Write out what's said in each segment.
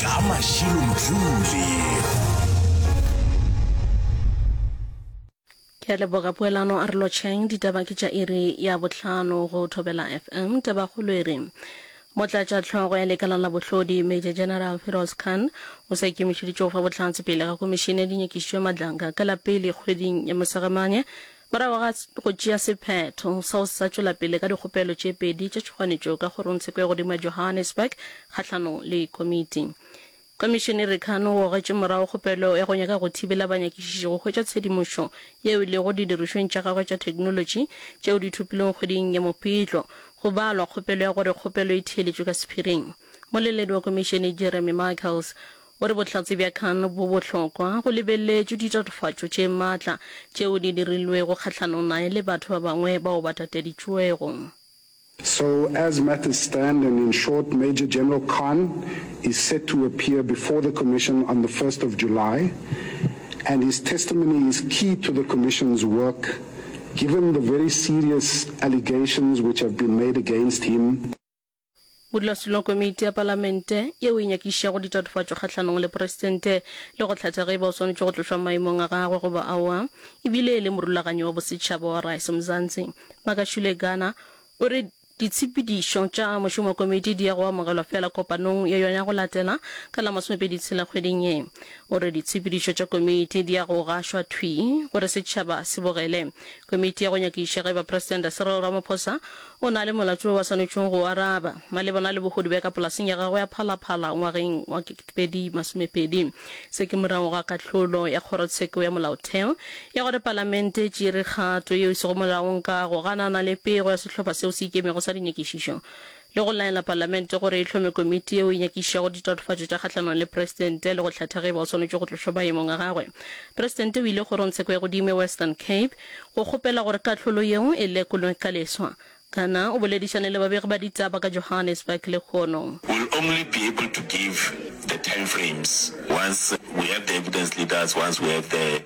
ka mašilo mdluli ke a leboga poelano a re lotšheng ditaba ke tša iri ya bohlano go thobela fm tabakgolo e re motlatša tlhogo ya lekala la bohlodi major general feroz khan o sa ikemišeditše go fa bohlatse pele ga komišene ya dinyakišišo ya madlanga ka la pele kgweding ya mosagamane Morago ga go tšea sephetho sa go se sa tšwela pele ka dikgopelo tše pedi tša tšhoganetšo ka kgorongtsheko ya godimo ya Johannesburg kgahlanong le komiti, Komišenere Khan o gogetše morago kgopelo ya go nyaka go thibela banyakišiši go hwetša tshedimošo yeo e lego didirišweng tša gagwe tša theknolotši tšeo di thopilwego kgweding ya Mopitlo, go balwa kgopelo ya gore kgopelo e theeletšwe ka sephiring. Moleledi wa komišene Jeremy Michaels O re bohlatse bja Khan bo bohlokwa go lebeleletšwe ditatofatšo tše matla tšeo di dirilwego kgahlanong nae le batho ba bangwe bao ba tateditšwego. So as matters stand and in short Major General Khan is set to appear before the Commission on the first of July and his testimony is key to the Commission's work given the very serious allegations which have been made against him. Modulasetulo komiti ya palamente yeo e nyakišago ditatofatšo kgahlanong le presidente le go hlatha ge e ba o swanetše go tlošwa maemong a gagwe goba aowa e bile e le morulaganyi wa bosetšhaba wa Rise Mzansi, Makashule Gana, o re ditshepedišo tša mošomo wa komiti di ya go amogelwa feela kopanong ya yona ya go latela ka la masomepedi tshela kgweding ye. O re ditshepedišo tša komiti di ya go gašwa thwi gore setšhaba se bogele Komiti ya go nyakiša ge ba Presidente Cyril Ramaphosa o na le molato wo ba swanetšego go o araba malebana le bohodi bja ka polaseng ya gagwe ya Phalaphala ngwageng wa 2020. Se ke morago ga kahlolo ya Kgorotsheko ya Molaotheo ya gore Palamente e tšere kgato yeo e sego molaong ka go ganana le pego ya sehlopha seo se ikemego sa dinyakišišo le go laela Palamente gore e hlome komiti yeo e nyakišago ditatofatšo tša kgahlanong le Presidente le go hlatha ge e ba o swanetše go tlošwa maemong a gagwe. Presidente o ile Kgorongtsheko ya Godimo ya Western Cape go kgopela gore kahlolo yeo e lekolwe ka leswa. Kana o boledišane le babegi ba ditaba ka Johannesburg lehono. We'll only be able to give the time frames once we have the evidence leaders, once we have the.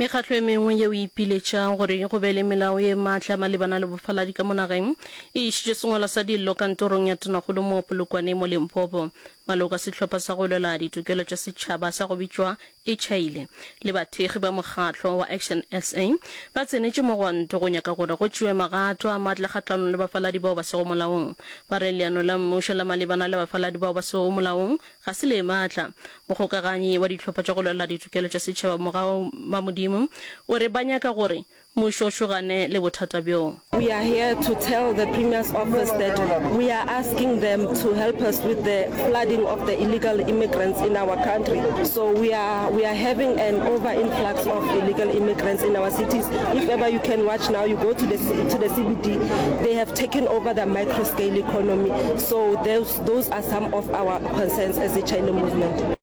Mekgatlo e mengwe yeo e ipiletšago gore go be le melao e matla malebana le bofaladi ka mo nageng e išitše sengwalo sa dillo kantorong ya tonakgolo mo Polokwane mo Limpopo. Maloka sehlopha sa go lwela ditokelo tša setšhaba sa go bitšwa Ichaile le bathekgi ba mokgatlo wa Action sa ba tsenetše mogwanto go nyaka gore go tšewe magato a matla kgahlanong le bafaladi bao ba sego molaong. Ba re leano la mmušo la malebana le bafaladi bao ba sego molaong Ga se le maatla. Mogokaganyi wa Dihlopha tša go Lwela Ditokelo tša Setšhaba Mogau Mamodimo o re ba nyaka gore mmušo o šogane le bothata bjoo. We are here to tell the Premier's office that we are asking them to help us with the flooding of the illegal immigrants in our country. So we are we are having an over influx of illegal immigrants in our cities. If ever you can watch now, you go to the to the CBD, they have taken over the micro scale economy. So those Those are some of our concerns as the China Movement.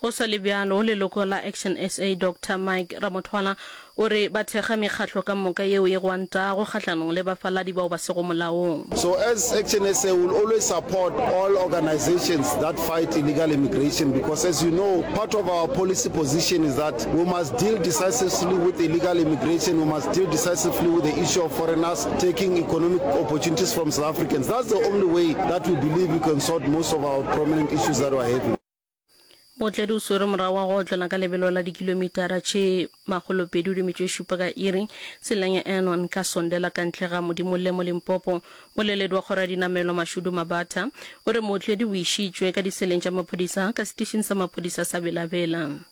Go sa le bjalo, leloko la Action SA, Doctor Mike Ramothwana o re ba thekga mekgatlo ka moka yeo e gwantago kgahlanong le bafaladi bao ba sego molaong. So as Action SA we will always support all organisations that fight illegal immigration because as you know part of our policy position is that We must deal decisively with illegal immigration, we must deal decisively with the issue of foreigners taking economic opportunities from South Africans. That's the only way that we believe we can sort most of our prominent issues that we are having. Motledi o swere morago wa go otlela ka lebelo la dikilomitara tše makgolo pedi o dimetšo e šupa ka iri tseleng ya Anon ka Sonde la ka ntle ga Modimolle mo Limpopo. Moleledi wa kgoro ya dinamelwa Mashudu Mabatha o re mootledi o išitšwe ka diseleng tša maphodisa ka setišing sa maphodisa sa Bela Bela.